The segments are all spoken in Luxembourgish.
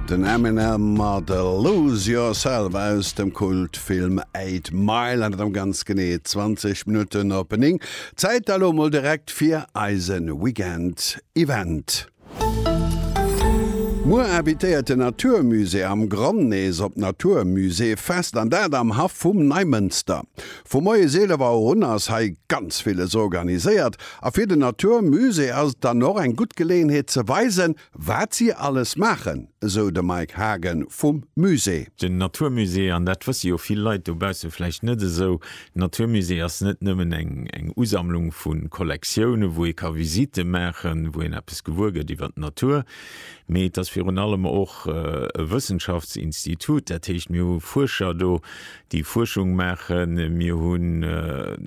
Den Eminem mat Lose Yourself aus dem Kultfilm Eight Mile an et am ganz genee 20 Minutten op 9. Zäit da lo mol direkt fir eise Weekend Event. Muer invitéiert de Natur Musée am Grand nees op d'Natur Musée Fest an dat am Haff vum Neimënster. Vu moies 11 Auer un ass hei ganz villes organiséiert a fir den Natur Musée ass et dann och eng gutt Geleeënheet ze weisen, wat si alles maachen, esou de Mike Haagen vum Musée. Den Natur Musée, an dat wësse jo vill Leit dobausse vläicht net esou, den Natur Musée ass net nëmmen eng Usammlung vu Kollektioune wou ee ka Visitte maachen, wou een eppes gewuer gëtt iwwer d'Natur, mee et ass virun allem och e Wëssenschaftsinstitut. Dat heescht mir hu Fuerscher do, déi Fuerschung maachen, mir hunn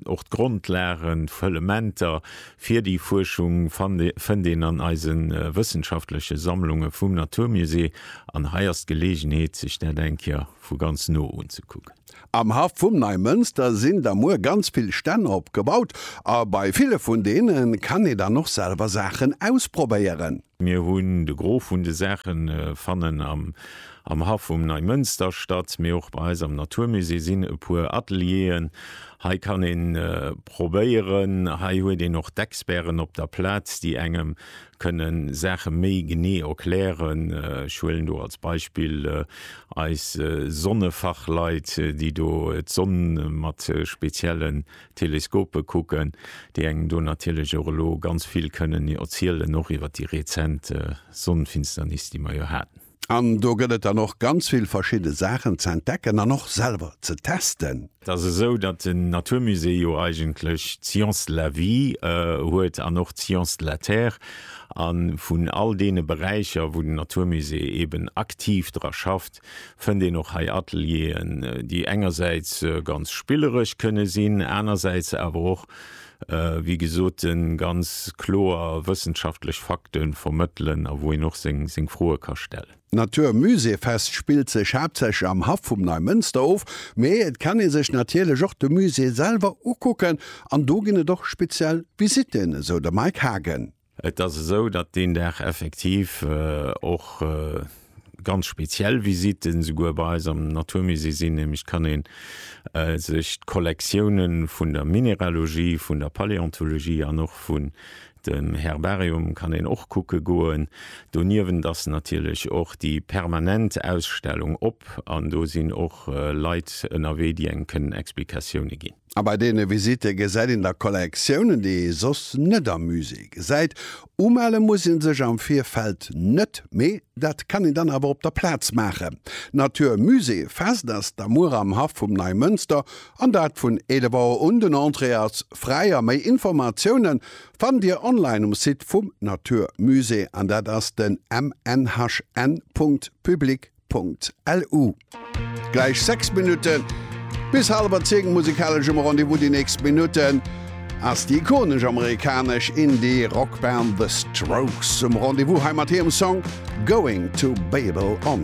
och d'Grondlagen, d'Fëllementer fir déi Fuerschung fënnt een an eise wëssenschaftleche Sammlunge vum Naturmusée an hei ass d'Geleegenheet sech dat eng Kéier vu ganz no unzekucken. Am Haff vum Neimënster sinn da muer ganz vill Stänn opgebaut a bei ville vun deene kann ee dann och selwer Saachen ausprobéieren. Mir hunn de Gros vun de Saache fannen am Haff vum Neimënster statt, mee och bei eis am Naturmusée sinn e puer Atelieren. Hei kann ee probéieren, hei huet een och d'Experten op der Plaz, déi engem kënne Saache méi genee erklären. Ech huelen do als Beispill eis Sonnefachleit, déi do d'Sonn mat spezielle Teleskope kucken, déi engem do natierlech och elo ganz vill kënnen erzielen, och iwwer déi rezent Sonnenfinsternis, déi mer jo haten. An do gëtt et dann och ganz vill verschidde Saachen ze entdecken an och selwer ze testen. Et ass esou, datt den Natur Musée jo eigentlech d'Science de la Vie huet an och d'Science de la Terre. A vun all deene Beräicher, wou den Natur Musée eeben aktiv dra schafft, fënnt een och hei Atelieren, déi engersäits ganz spilleresch kënne sinn, anersäits awer och, wéi gesot, ganz kloer wëssenschaftlech Fakte vermëttelen a wou een och seng Froe ka stellen. D'Natur Musée Fest spillt sech haaptsächlech am Haff vum Neimënster of, mee et kann ee sech natierlech och de Musée selwer ukucken an do ginn et och speziell Visitten, esou de Mike Haagen. Et ass esou, datt deen Dag effektiv och ganz speziell Visitten esouguer bei eis am Naturmusée sinn, nämlech et kann ee sech d'Kollektioune vun der Mineralogie, vun der Paläontologie an och vun dem Herbarium kann een och kucke goen. Doniewent ass natierlech och déi permanent Ausstellung op an do sinn och Leit ënnerwee, déi engem kënnen Explikatioune ginn. A bei deene Visitte gesäit een da Kollektiounen, déi ee soss net am Musée gesäit. Umelle muss ee sech am Virfeld net, mee dat kann een dann awer op der Plaz maachen. Natur Musée Fest ass da muer am Haff vum Neimënster an dat vun 11 Auer un. Den Entrée ass fräi a méi Informatioune fannt Dir online um Site vum Natur Musée an dat ass den mnhn.public. Punkt-LU. Gläich 6 Minutten bis haleber 10, musikaleschem Rendez-vous. Déi nächst Minutten ass déi ikonesch amerikanesch Indie-Rockband The Strokes um Rendez-vous, hei mat hirem Song Going to Babel on.